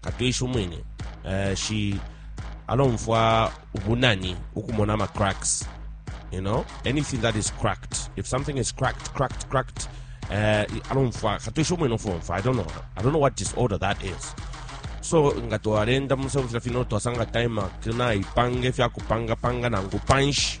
katwishi umwine uh, shi alomfwa ubunani ukumona ama cracks you know anything that is cracked if something is cracked cracked cracked uh, alomfwa katwishi umwine ofomfwa i don't know i don't know what disorder that is so nga twalenda mumusebo fila fino twasanga time akina ipange fyakupangapanga nangu panshi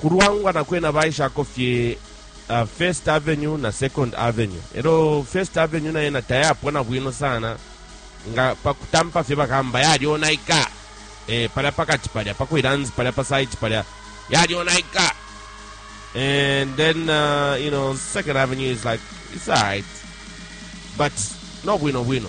Ku Luangwa kwena baishako fye uh, First Avenue na Second Avenue. Elo First Avenue na yena tayapwa na bwino sana nga pakutampa fye bakamba yalyonaika eh, palya pakati palya pakwilanzi palya pa site palya yalyonaika and then uh, you know Second Avenue is like it's alright but no bwino bwino